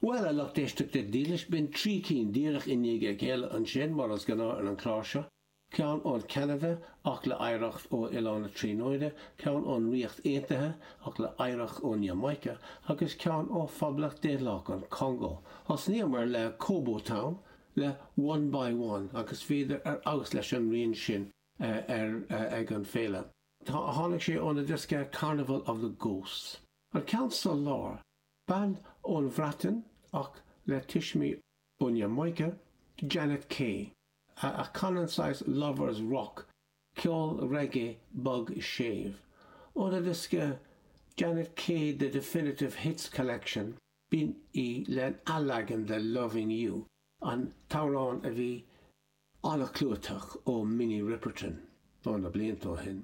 Bhuail an lucht éisteachta dílis, b'in trí cinn díreach i ndiaidh a chéile ansin, mar is gnáth ar an chlár seo, ceann ón Cheanada ach le hoidhreacht ó Oileán na Tríonóide, ceann ón Ríocht Aontaithe ach le hoidhreacht ón Iamáice, agus ceann ó Phoblacht Daonlathach an Chongó. Thosnaíomar le Kobo Town le One by One agus bhíodar ar fheabhas leis an rian sin ag an féile. Tháinig sé óna diosca Carnival of the Ghosts. An ceann sa lár, bean ón Bhreatain ach le tuismí ón Iamáice, Janet Kay, a chanann saghas lovers rock, ceol reggae bog séimh. Óna diosca Janet Kay The Definitive Hits Collection, b'in í lena leagan de Loving You, an t-amhrán a bhí an-chlúiteach ó Minnie Riperton, ó na blianta ó shin.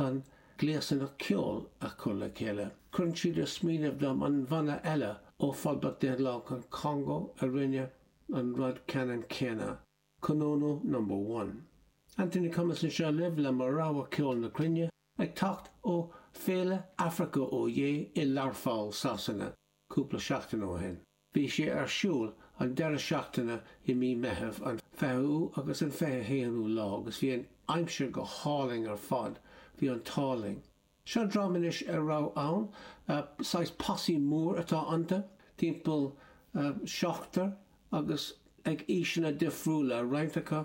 Chun gléasanna ceoil a chur le chéile, cuireann siad ag smaoineamh dom an banna eile ó Phoblacht Daonlathach an Chongó a rinne an rud ceannann céanna, Konono Number One. Anthony Cummins anseo libh le mo rogha ceoil na cruinne, ag teacht ó Féile Africa Oyé i Learpholl, Sasana, cúpla seachtain ó shin. Bhí sé ar siúl an deireadh seachtaine i mí Meitheamh, an 20ú agus an 21ú lá, agus bhí an aimsir go hálainn ar fad. Bhí an t-ádh linn. Seo dream anois a raibh ann, saghas posse mór atá iontu, timpeall seachtar agus ag aoiseanna difriúla, roinnt acu